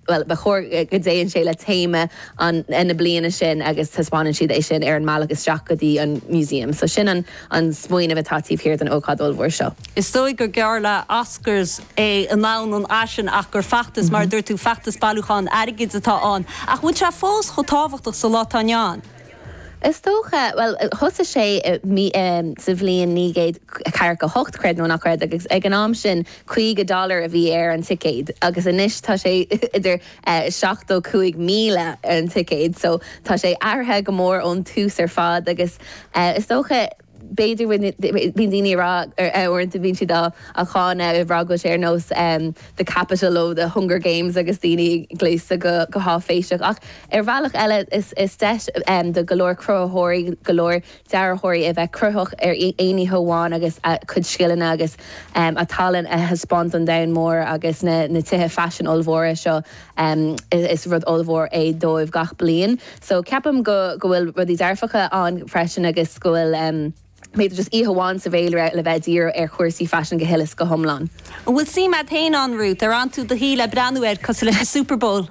Bhuel, ba chóir go dtéann sé le téama an na bliana sin agus taispeánann siad é sin ar an mbealach isteach go dtí an museum. So sin an an smaoineamh atá taobh thiar den ócáid ollmhór seo. Is dóigh gur geall le Oscars é i ndomhan an fhaisin ach gur feachtas, mar a dúirt tú, feachtas bailiúcháin airgid atá ann. Ach an bhfuil sé fós chomh tábhachtach sa lá atá inniu ann? Is dócha, bhuel, thosaigh sé sa bhliain naoi gcéad ceathracha a hocht, creid nó ná creid, agus ag an am sin caoga dollar a bhí ar an ticéad agus anois tá sé idir seachtó cúig míle ar an ticéad so tá sé athraithe go mór ón tús ar fad agus is dócha, b'fhéidir bíonn daoine ag rá uaireanta bíonn siad á cháineadh ag rá go bhfuil sé ar nós the Capitol ó the hunger games agus daoine ag gléasadh go háiféiseach ach ar bhealach eile is deis do go leor cruthaitheoirí go leor dearthóirí a bheith cruthaitheach ar aon oíche amháin agus a cuid scileanna agus a tallann a thaispeáint don domhan mór agus na tithe faisin ollmhóra seo Is rud ollmhór é dóibh gach bliain so ceapaim go go bhfuil rudaí dearfacha ann freisin agus go bhfuil em b'fhéidir just oíche amháin sa bhféilire le bheith ag díriú ar chúrsaí faisin go huile is go hiomlán. An bhfuil suim a'd féin ann, Ruth? Ar fhan tú do shuí le breathnú air cosúil leis an Superbowl?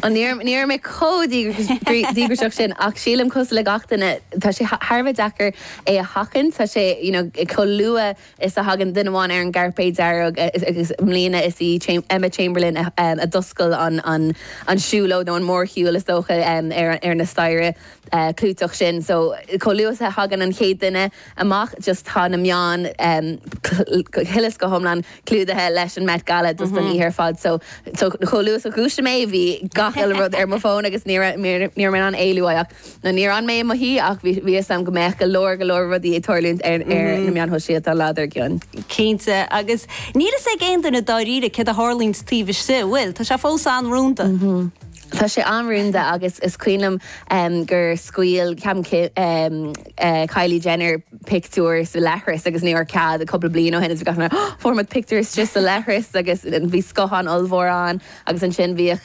Ó ní raibh ní raibh mé chomh díograiseach sin ach sílim cosúil le gach duine tá sé thar a bheith deacair é a sheachaint tá sé you know chomh luath is a thagann duine amháin ar an gcairpéad dearg agus i mbliana is í Emma Chamberlain a d'oscail an siúlóid nó an mórshiúl is dócha ar na staighre clúiteach sin so chomh luath is a thagann an chéad duine amach just tá na meáin go huile is go hiomlán clúdaithe leis an Met Gala just don oíche ar fad so chomh luath is a dhúisigh mé bhí gach uile rud ar mo fón agus ní raibh mé in ann éalú uaidh ach Now níor fhan mé i mo shuí ach bhí bhí 'fhios a'm go mbeadh go leor go leor rudaí ag tarlúint ar ar na meáin shóisialta an lá dar gcionn. Cinnte, agus níl fhios ag aon duine dáiríre céard a tharlaíonns taobh istigh, an bhfuil? Tá sé fós an-rúnda. Tá sé an-rúnda agus is cuimhin liom ehm gur scaoil ceapaim Kim ehm eh Kylie Jenner pictiúr sa leithreas agus ní raibh cead cúpla bliain ó shin agus bhí gach duine fuair muid pictiúr istigh sa leithreas agus bhí scáthán ollmhór ann. Agus ansin bhíodh,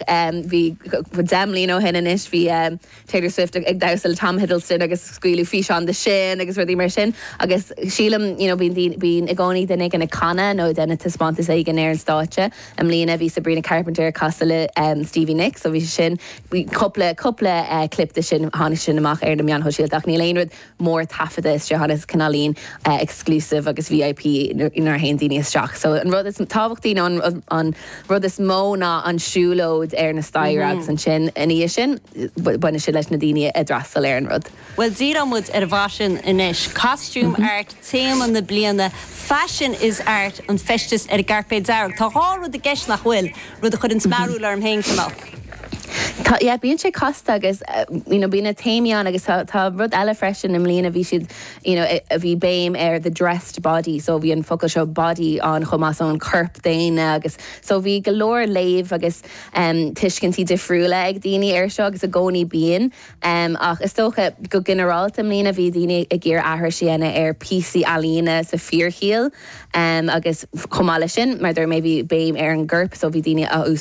bhí, deich mbliana ó shin anois, bhí Taylor Swift ag damhsa le Tom Hiddleston agus scaoileadh físeán de sin agus rudaí mar sin agus sílim, you know, bíonn daoine, bíonn i gcónaí duine éigin ag canadh nó ag déanamh taispeántas éigin ar an stáitse. I mbliana bhí Sabrina Carpenter ag casadh le Stevie Nicks so bhí sé sin, bhí cúpla, cúpla clip de sin, tháinig sin amach ar na meáin shóisialta ach níl aon rud, mór taifeadta tá sé chomh chomh cineálín exclusive agus VIP nuair a théann daoine isteach so an rud is tábhachtaí nó an rud is mó ná an siúlóid ar na staighre agus ansin ina dhiaidh sin baineann sé leis na daoine atá ag freastal ar an rud. Bhuel díreoidh muid ar an bhfaisean anois. Costume Art téama na bliana, Fashion is Art an feisteas ar an gcairpéad dearg. Tá dhá rud i gceist nach bhfuil? rud a chuireann smearadh orm féin chomh maith. Tá, yeah, bíonn sé casta agus you know bíonn na téamaí ann agus tá rud eile freisin i mbliana bhí siad you know a bhí béim ar the dressed body so bhí an focal seo body ann chomh maith so an corp daonna agus so bhí go leor léamh agus tuiscintí difriúla ag daoine ar seo agus i gcónaí bíonn. Ach is dócha, go ginearálta i mbliana bhí daoine ag iarraidh aithris a dhéanamh ar phíosaí ealaíne sa fíorshaol agus chomh maith leis sin, mar a dúirt mé, bhí béim ar an gcorp so bhí daoine á